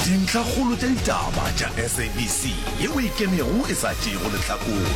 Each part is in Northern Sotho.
Dintlhakgolo tša ditaba tša SABC ye o e kemego e sa tšeego lehlakore.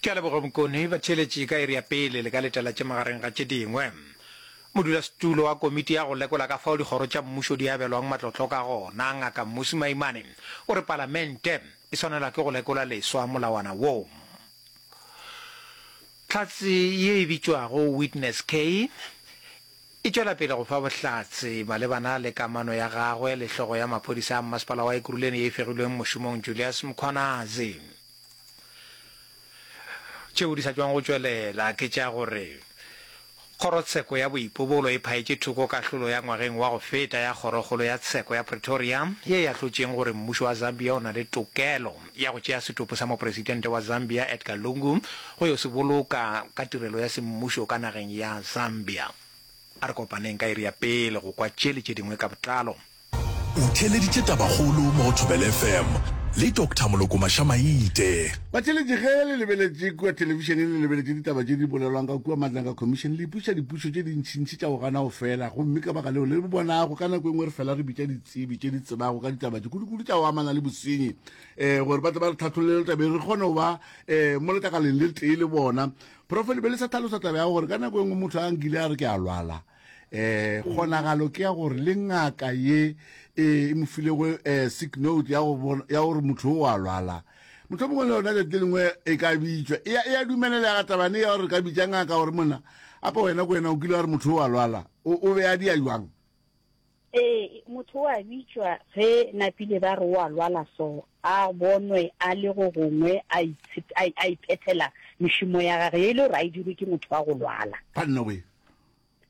Ke a leboga Bokone, batheeletši ka iri ya pele le ka letalatše magareng ga tše dingwe. Modulasetulo wa komiti ya go lekola ka fao dikgoro tša mmušo di abelwang matlotlo ka gona, Ngaka Mmusi Maimane, o re Palamente e swanelwa ke go lekola leswa molawana wo. Tlhatse ye e bitšwago Witness K, E tšwela pele go fa bohlatse malebana le kamano ya gagwe le hlogo ya maphodisa a mmasepala wa Ekurhuleni ye e fegilweng mošomong Julius Mkhwanazi. Tšeo di sa tšwang go tšwelela ke tša gore Kgorotsheko ya Boipobolo e phaetše thoko kahlolo ya ngwageng wa go feta ya Kgorokgolo ya Tsheko ya Pretoria ye e ahlotšeng gore mmušo wa Zambia o na le tokelo ya go tšea setopo sa mopresitente wa Zambia Edgar Lungu go yo se boloka ka tirelo ya semmušo ka nageng ya Zambia. A re kopaneng ka iri ya pele go kwa tše le tše dingwe ka botlalo. O theeleditše Tabakgolo mo go Thobela FM le Doctor Molokoma Shamaite. Batheeletši ge le lebeletše kua thelebišeneng le lebeletše ditaba tše di bolelwang ka kua matleng ka khomišene le ipuša dipušo tše dintšintši tša go gana go fela gomme ka baka leo le bonago ka nako e nngwe re fela re bitša di tsebi tše di tsebago ka ditaba tše kudu-kudu tša go amana le bosenyi um gore ba tle ba re tlhatholele tabeng re kgone go ba um mo letakaleng le tee le bona profele be le sa tlhalosa taba ya gore ka nako e nngwe motho a nkile a re ke a lwala eh kgonagalo ke ya gore le ngaka ye eh, e mo filego um eh, sick note ya gore motho o a lwala motho mongwe le yona lete le lengwe e ka bitswa e, e ya dumelelega tabane ya gore ka bitsa ngaka gore monna apa wena ko wena o kile wa re motho o a lwala o be a di ya jwang Ee, motho o a bitšwa ge napile ba re o a lwala so a bonwe a le go gongwe a a iphethela mešomo ya gage ye e le gore a e dirwe ke motho wa go lwala. Banna we.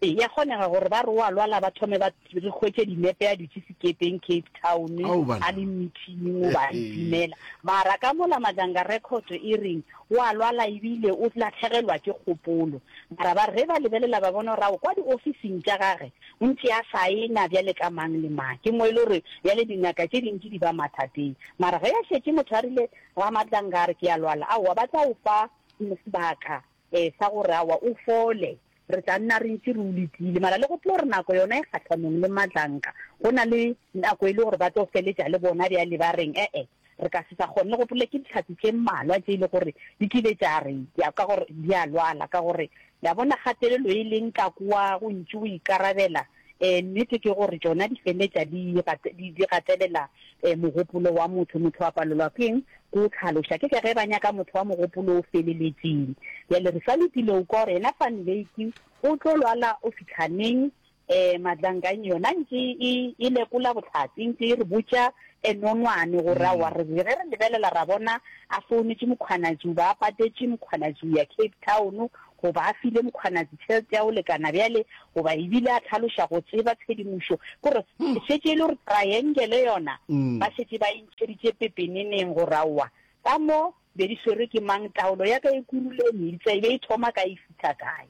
Ee, ya kgonega gore ba re o a lwala ba thome ba re hwetše dinepe a dutše sekepeng Cape Town a le meeting o ba itumela. Mara ka mola Madanga record e reng o a lwala ebile o latlhegelwa ke kgopolo. Mara ba re ba lebelela ba bona gore ao kwa diofising tša gage O ntše a sa e na bjale ka mang le mang. Ke mo e le gore bjale dingaka tše dintši di ba mathateng. Mara ge a šetše motho a rile, Ramatlanga a re ke a lwala, aowa ba tla o fa sebaka um sa gore aowa o fole. Re tla nna re ntše re o letile. Mara le go tlo re nako yona e kgahlanong le Matlanga, go na le nako e le gore ba tlo feletša le bona bjale ba reng, ee. Re ka se sa kgone le go pole ke dihlatse tše mmalwa tše e le gore di kile tša re ya ka gore di a lwala, ka gore, le a bona, kgatelelo e leng ka kua go ntši go ikarabela. Ee, nnete ke gore tšona di feletša di, di, di gatelela um mogopolo wa motho. Motho a palelwa ke eng? Ke go hlaloša. Ke ka ge ba nyaka motho wa mogopolo o feleletšeng. Bjale re sa lokile go kwa gore yena Van Wyk o tlo lwala go fihla neng, Ee, Madlanganyi yona ntše e, e lekola bohlatse, ntše e re botša e nonwane gore a wa re ge re lebelela ra bona a founetše Mokgwanatši, o ba a patetše Mokgwanatši o ya Cape Town goba a file Mokgwanatši tšhelete ya go lekana bjale goba e bile a tlhaloša go tseba tshedimošo gore e šetše e le gore triangle yona ba šetše ba e ntšheditše pepeneneng gore a wa ka mo Be di swerwe ke mang? Taolo ya ka e kurule meetse e be e thoma kae e fihla kae?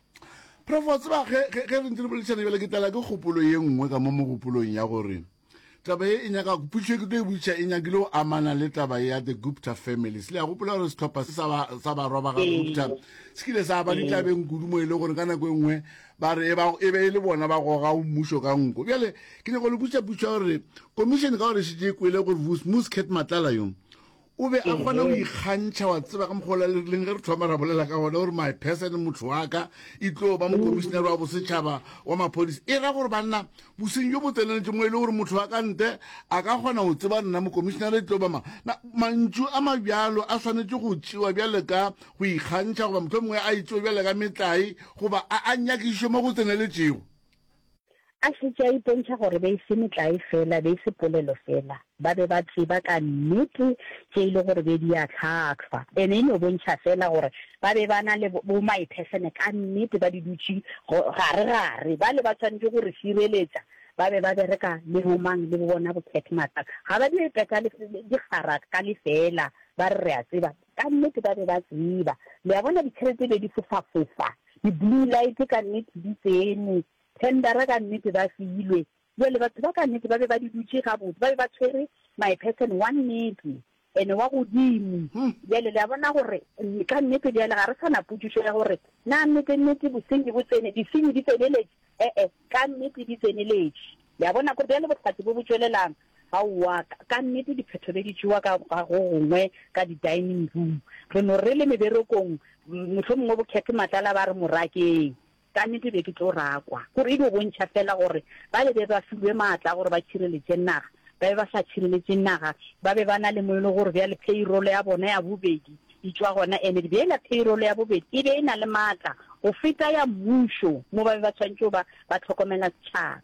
Prof, wa tseba, ge, ge, ge re ntse re boledišana bjale, ke tlala ke kgopolo ye nngwe ka mo mogopolong ya gore taba ye e nyaka, potšo ye ke tlo e botšiša e nyakile go amana le taba ye ya the Gupta families. Le a gopola gore sehlopha se sa ba, sa barwa ba ga Gupta se kile sa ba ditlabeng kudu mo e le gore ka nako e nngwe ba re e ba, e be e le bona ba gogago mmušo ka nko. Bjale ke nyaka go le botšiša potšo ya gore komišene ka gore e šetše e kwele gore Mus, Mus Kate Matlala yo, O be a kgona go ikgantšha, wa tseba, ka mokgwa ola le rileng ge re thoma ra bolela ka gona, o re, My person, motho wa ka, e tlo ba mokomišinare wa bosetšhaba wa maphodisa. E ra gore, banna, bosenyi bjo bo tseneletše mo e le gore motho wa ka nte a ka kgona go tseba nna mokomišinare e tlo ba mang. Na, mantšu a mabjalo a swanetše go tšewa bjale ka go ikgantšha, goba mohlomongwe a e tšewe bjale ka metlae, goba a a nyakišišwe mo go tseneletšego. A šetše a ipontšha gore be e se metlae feela, be e se polelo feela. Ba be ba tseba ka nnete tše e le gore be di a hlahlwa. Ene e no bontšha feela gore ba be ba na le bomaephehlene ka nnete, ba di dutše garegare. Bale ba swanetše go re šireletša ba be ba bereka le bomang le bo bona bokhethi mathata. Ga ba di peta dikgara ka lefeela ba re re a tseba. Ka nnete ba be ba tseba. Le a bona, ditšhelete be di fofafofa. Di-blue light ka nnete di tsene. Tendera ka nnete ba filwe. Bjale, batho ba ka nnete ba be ba di dutše gabotse, ba be ba tshwere my person wa nnete, ene wa godimo. Bjale, le a bona gore, ka nnete bjale ga re sa na potšišo ya gore na nnete-nnete bosenyi bo tsene, disenyi di tseneletše, E-e, ka nnete di tseneletše. Le a bona, go bjalo bohlatse bo bo tšwelelang. Aowa, ka, ka nnete diphetho be di tšewa ka, ka go gongwe ka di-dining room. Re no re le meberekong, mohlomongwe bo Cathy Matlala ba re mo rakeng. Ka nnete be ke tlo rakwa. Gore e dio bontšha feela gore bale be ba filwe maatla a gore ba tšhireletše naga, ba be ba sa tšhireletše naga, ba be ba na le mo e le gore bjale payroll ya bona ya bobedi, Di tšwa gona, ene di beela payroll ya bobedi e be e na le maatla go feta ya mmušo mo ba be ba swanetše go ba ba hlokomela setšhaba.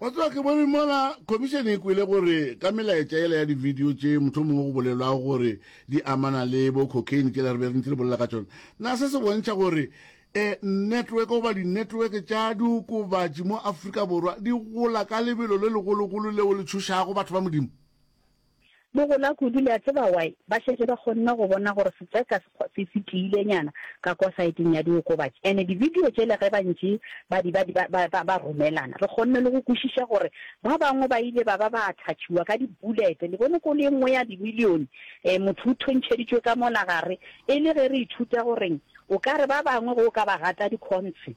Wa tseba, ke bone mola Khomišene e kwele gore ka melaetša yela ya di-video tše mohlomongwe go bolelwago gore di amana le bo cocaine tšela re be re ntše re bolela ka tšona, na se se bontšha gore um network goba di-network tša diokobatši mo Afrika Borwa di gola ka lebelo le legologolo leo le tšhošago batho ba Modimo? Bo gola kudu, le a tseba y? Ba šetše ba kgonne go bona gore setseka se, se tiilenyana ka kwa saeteng ya diokobatši. And dibidio tšela ge ba ntše ba di, ba di, ba, ba, ba romelana, re kgonne le go kwešiša gore ba bangwe ba ile ba ba ba attactšhiwa ka dibulete, le bone, kolo ye nngwe ya dimilione. E, motho o thontšheditšwe ka mola gare, e le ge re ithuta gore o ka re ba bangwe ge o ka ba gata dikhontshe,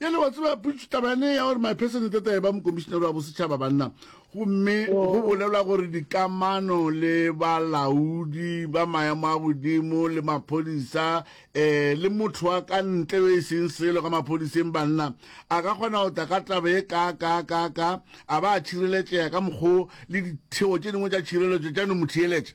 bjale wa tseba putso taba yane ya gore my person tata e ba mokomišenere wa bosetšhaba banna gomme go oh. bolelwa gore dikamano le balaodi ba maemo a godimo le maphodisa um le motho wa ka ntle yo e seng selo ka maphodiseng banna a ka kgona go tla ka taba e ka ka ka ka a ba a tšhireletsega ka mokgwa le ditheo tše dingwe tša tšhireletso tša no mo theeletša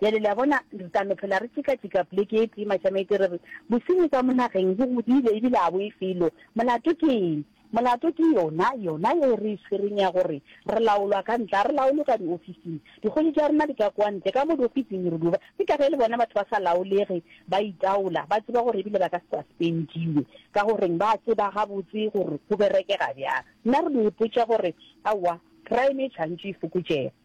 Bjale, le a bona, re tla no phela re tšeka-tšeka pleke e tee, mašamaite, re re, Bosenyi ka mo nageng bo godile, ebile a bo e felo. Molato ke eng? Molato ke yona, yona ye re e tshwereng ya gore re laolwa ka ntle, ga re laolwe ka diofising. Dikgoši tša rena di ka kwa ntle, ka mo diofising re duba. Ke ka ge le bona batho ba sa laolege, ba itaola, ba tseba gore ebile ba ka se suspendiwe. Ka goreng? Ba tseba gabotse gore go berekega bjang. Nna re no ipotša gore, Aowa, crime e tšhwantšwe e fokotšege.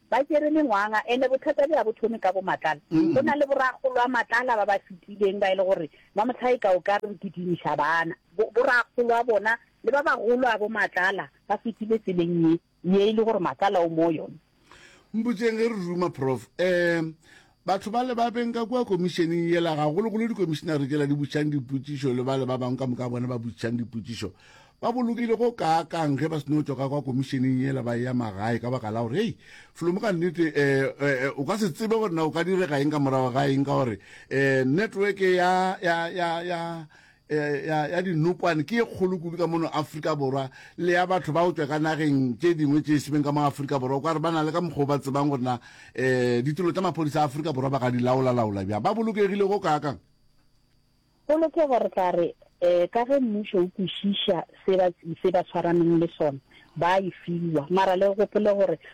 Ba tšere mengwanga, ene bothata bja bo thome ka bomatlala. Go na le borakgolwamatlala ba ba fetileng ba e le gore ba mohlaika o ka re re kitimiša bana. Borakgolwa bona le ba bagolo a bomatlala ba fetile tseleng ye, ye e le gore matlala o mo yona. Mpotšeng ge re ruma, Prof. Um Batho bale ba benka kua komišeneng yela, gagologolo dikomišenare tšela di botšang dipotšišo le bale ba bangwe ka moka bona ba botšang dipotšišo, ba bolokile go kaakang ge ba se no tšwa ka kua komišeneng yela ba eya magae ka baka la gore, hei, felo mo ka nnete eh, eh, eh, o ka se tsebe gore na o ka direga eng ka morago ga eng, ka gore eh, network ya, ya, ya, ya, eh, ya, ya dinokwane ke e kgolo kudu ka mono afrika borwa le ya batho ba go tswa ka nageng tse dingwe tse e semeng ka mo afrika borwa kwa re ba na le ka mokgwa o ba tsebang gore na um eh, ditilo tsa maphodisa a afrika borwa ba ka di laolalaola bjang ba bolokegile go kaakang polokego re tla re um ka ge mmušo o kwešiša se ba tshwaraneng le sona ba e fiwa mara le gopole gore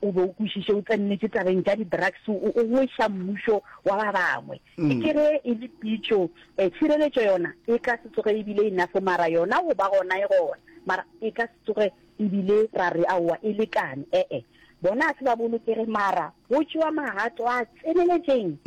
O be o kwešiše o tsennetše tabeng tša di-drugs, o o gweša mmušo wa ba bangwe. E ke ge e le pitšo, eh, tšhireletšo yona e ka se tsoge e bile enough, mara yona go ba gona e gona, mara e ka se tsoge e bile ra re aowa e lekane, e-e. Bona a se ba bolokege, mara go tšewa magato a tseneletšeng,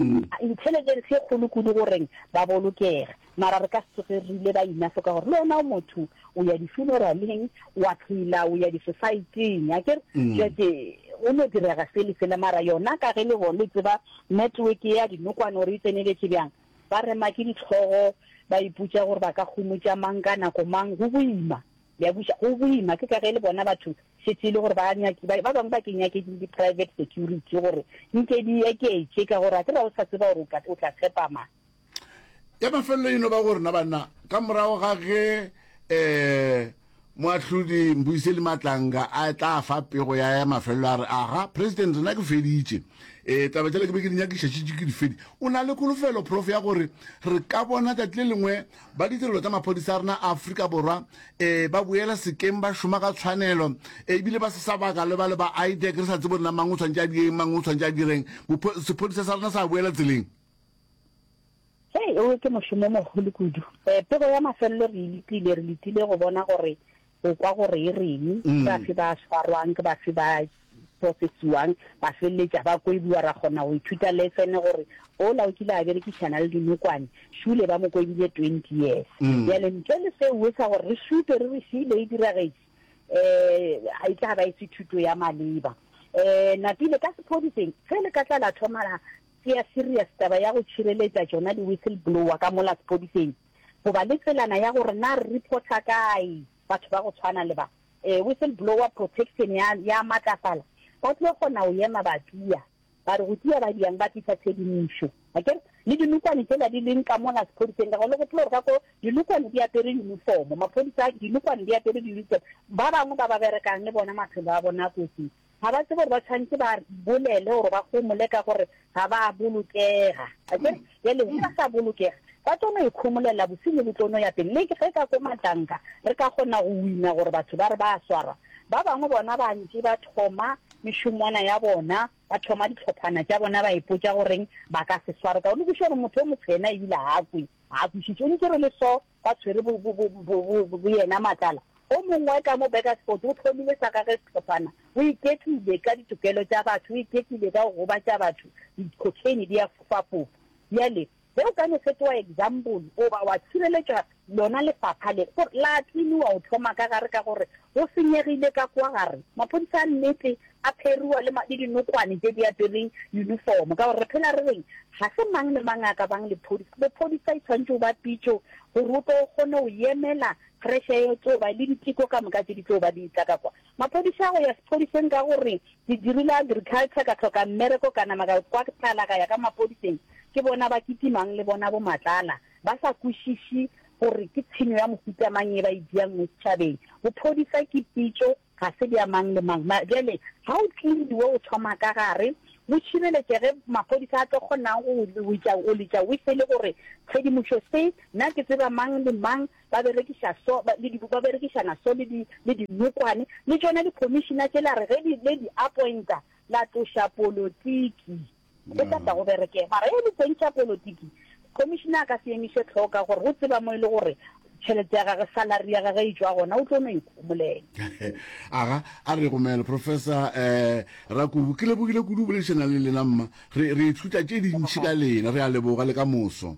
intelligence e kgolo kudu go reng ba bolokege. mara re ka se tsoge re ile ba ina hloka gore le wena o motho o ya di-funeraleng wa phela o ya di-societyng a kere jake go no direga se le sela mara yona ka ge le bo le tseba network ya dinokwane gore e tseneletše bjang ba rema ke ditlhogo ba iputša gore ba ka kgomotša mang ka nako mang go boima ya buša go boima ke ka ge le bona batho šetse e le gore ba nyaki ba bangwe ba ke nyake ke di-private security gore nke di eketše ka gore a ke ra o sa tseba gore o tla tshepamang ya mafelelo e no ba gore na banna ka morago ga ge um moahlodi mbuise le matlanga a tla fa pego ya ya mafelelo a re aga president rena ke feditše um eh, taba tsela ke be ke di nyakišatšitše ke difedi o na le kolofelo prof ya gore re ka bona tsatsi le lengwe ba ditirelo tsa maphodisa a rena a aforika borwa um ba boela sekeng ba šoma ka tshwanelo um ebile ba se sa baka le ba le ba idec re sa tsebo rena mang o tshwanetse a direng mang o tshwanetse a direng sephodisa sa rena sa boela tseleng Hei, owe ke mošomo o mogolo kudu. Eh, pego ya mafelelo re e letile, re letile go bona gore go kwa gore e reng, ke mm. bafe ba swarwang, ke bafe ba profesiwang, ba feleletša ba koibiwa, ra kgona go ithuta lesene gore ola o kile a berekišana le dinokwane šule ba mo koibile twenty years mm. bjale ntle le seo sa gore re šupe re re šile e diragetše um ga e tla ba e se thuto ya maleba um napile ka sephodiseng ge le ka tla la thoma la Ke ya serious taba ya go tšhireletša tšona di whistleblower ka mola sepodiseng. Goba le tselana ya gore na re reporter kae batho ba go tshwana le ba. Eh whistleblower protection ya ya matlafala ba tlo kgona go yema ba tia. Ba re go tia ba diang ba tlisa tshedimošo. Akere? Le dinokwane tsela di leng ka mola sepodiseng ka gore le gopola gore ka ko dinokwane di apere uniform. Maphodisa dinokwane di apere di uniform. Ba bangwe ba ba berekang le bona maphelo a bona a kotsing. Ga ba tsebe gore ba tshwanetse ba bolele gore ba gomole ka gore ga ba a bolokega. Akere? Bjale ge ba sa bolokega, ba tlo no ikhomolela, bosenyi bo tlo no ya pele. Le ge ka ko matlanka re ka kgona go wina gore batho ba re ba a swarwa, ba bangwe bona ba ntše ba thoma mešomwana ya bona, ba thoma ditlhophana tša bona, ba ipotša goreng ba ka se swarwe. Ka o no kwešiša gore motho yo motshwena ebile ga a kwe, ga a kwešiše, o ntše re le so, ba tshwere bo, bo, bo, bo, bo, bo, boyena matlala. O mongwe ka mo Bakersford o hlomile sa gagwe sehlophana. O iketlile ka ditokelo tša batho, o iketlile ka go gobatša batho, dikhokheine di a fofafofa. Bjale, ge o ka no fetoa eksampole, goba wa tšhireletšwa, lona lefapha le, gore la tlimiwa go thoma ka gare ka gore go senyegile ka kua gare. Maphodisa a nnete a pheruwa le ma, le dinokwane tše di apere uniform, ka gore re phela re reng, ga se mang le mang a ka bang lephodisa. Bophodisa e tshwanetše o ba pitšo gore o tlo o kgone go yemela pressure e tlo ba le diteko ka moka tše di tlo ba di tla ka kwa. Maphodisa a go ya sephodiseng ka gore ke dirile agriculture ka hloka mmereko ka nama ka kwa tlala ka ya ka maphodiseng, ke bona ba kitimang le bona bomatlala ba sa kwešiši gore ke tshenyo ya mohuta mang ye ba e diang mo setšhabeng. Bophodisa ke pitšo Ga se bja mang le mang. Mara bjale ga o cleaniwe o thoma ka gare, go šireletše ge maphodisa a tlo kgonang go o letša whistle gore tshedimošo se, nna ke tseba mang le mang ba berekiša so, ba le ba berekišana so le di le dinokwane. Le tšona di-commissioner tše la re ge di le di appointa la tloša politiki. Go tla tla go bereke, mara e le teng tša polotiki, Commissioner a ka se emiše tlhoo ka gore o tseba mo e le gore tšhelete ya gage, salary ya gage e tšwa gona, o tlo no ikhomolela. Aga, a re gomela, Professor um Rakubu. Ke lebogile kudu go boledišana le lena, mma. Re, re ithuta tše dintši ka lena. Re a leboga, le ka moso.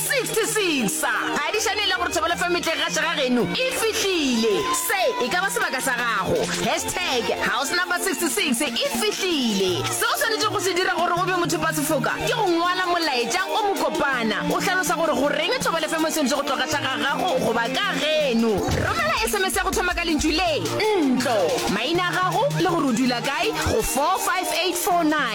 66 sa phadišane le gore thobelo fm e tle gaše ga geno e fihlile se e ka ba sebaka sa gago hashtag house number 66 e fihlile se o swanetše go se dira gore o be mothopasefoka ke go ngwala molaetša o mokopana o hlalosa gore go reng thobelo fm e swanetše go tlo gaša ga gago goba ka geno romela sms ya go thoma ka lentšu le ntlo maina a gago le gore o dula kae go 45849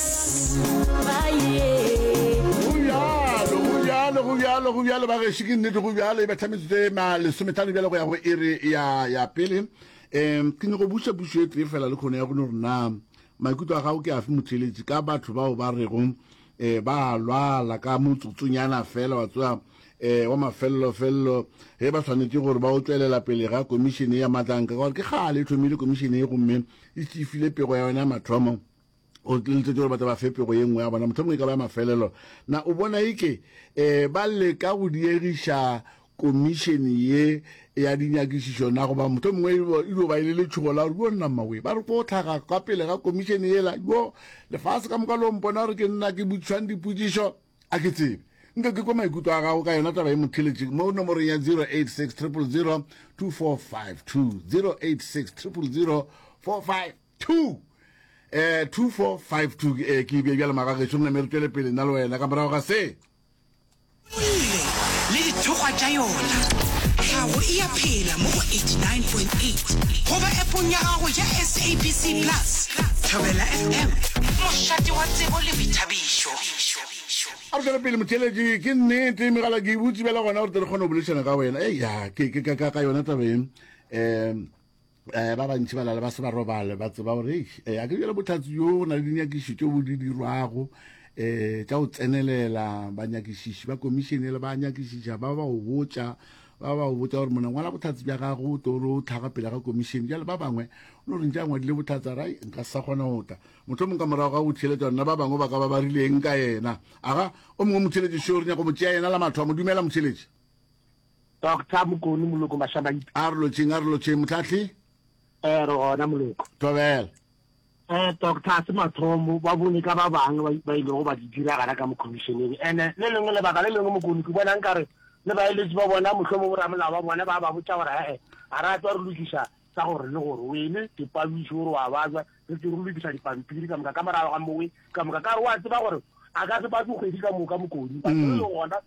bjalo go bjalo ba gešo ke nnete go bjalo e ba thametsotse lesometlhano bjalo go ya go ere ya ya pele um ke nyako buša pušo e tee fela le kgone ya gone gore na maikutlo a gago ke afe motheletši ka batho bao ba rego um ba lwala ka motsotsonyana fela wa tsoa um eh, wa mafelelofelelo ge ba tshwanetse gore ba o tswelela pele ga komišene ya matlanka ka gore ke kgale e thomile komišene e gomme e tšifile pego ya yona ya mathomo o tliletšwe gore ba tla ba fepego ye nngwe ya bona mothomong e ka ba ya mafelelo na o bona e ke um ba leka go diegiša komišene ye ya dinyakišišo na goba mothong mongwe e dio e ba e le letšhogo la gore yo nna mmawe ba re ko tlhaga ka pele ga komišene yela yo lefase ka moka lo mpona gore ke nna ke butšhwang dipotšišo a ke tsebe nke ke kwa maikutlo a gago ka yona taba e motheletše mo nomorong ya 086 000 2452 086 000 2452 2 eh 2452 eh ke be bjale magageso rena me re tšwele pele nna le wena ka morago ga se ile le dithokgwa tša yona tlhago e ya phela mo go 89.8 goba epong ya gago ya sabc plus thobela fm mošate wa tsebo le boithabišo a re tswele pele motheletši ke nnete megala ke e butsi bjala gona gore tle re kgone go bolešana ka wena eya ke ka yona tabeng um um ba bantši ba lala ba se ba robale ba tseba gore um a ke bjale botlhatsi jo go na le dinyakišišo tšeo bo di dirwago um tša go tsenelela banyakišiši ba komišene le ba nyakišiša ba ba go botša ba ba go botša gore mona ngwala botlhatsi bja gago o tore o tlhaga pele ga komišene jale ba bangwe o no rentša ngwadile botlhatsi a ra nka sa kgona go tla motlho mongwe ka morago ga go theletša nna ba bangwe ba ka ba ba rileng ka yena aga o mongwe motheletši šeo re nyako mo tšea yena la matho a mo dumela motheletši Doctor Mokoni Moloko Mashamaipa. A re lotšeng, a re lotšeng, Motlahli. Eh, re gona Moloko. Tobela. Eh, doctor, a se mathomo, ba bone ka ba bang ba ilego ba di diragala ka mo commissioneng. Ene, le lengwe lebaka le lengwe Mokoni, ke bona nkare le baeletsi ba bona, mohlomong bo ramolao ba bona, ba ba botša gore he-e, a ra tswa re lokiša tsa gore le gore wele dipabiši gore wa bajwa re tse re lokiša dipampiri ka moka ka morago ga mowe ka moka ka re wa tseba gore a ka se batse kgwedi ka moka mokoni ba le gona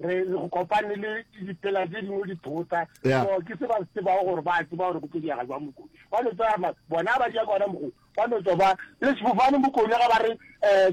re re go kopane le dipela tse dingwe di thota so ke se ba se ba gore ba tseba gore go tlo diega jwa mokone ba no tsaya bona ba ja gona mogo ba no tswa ba le sefofane mokone ga ba re um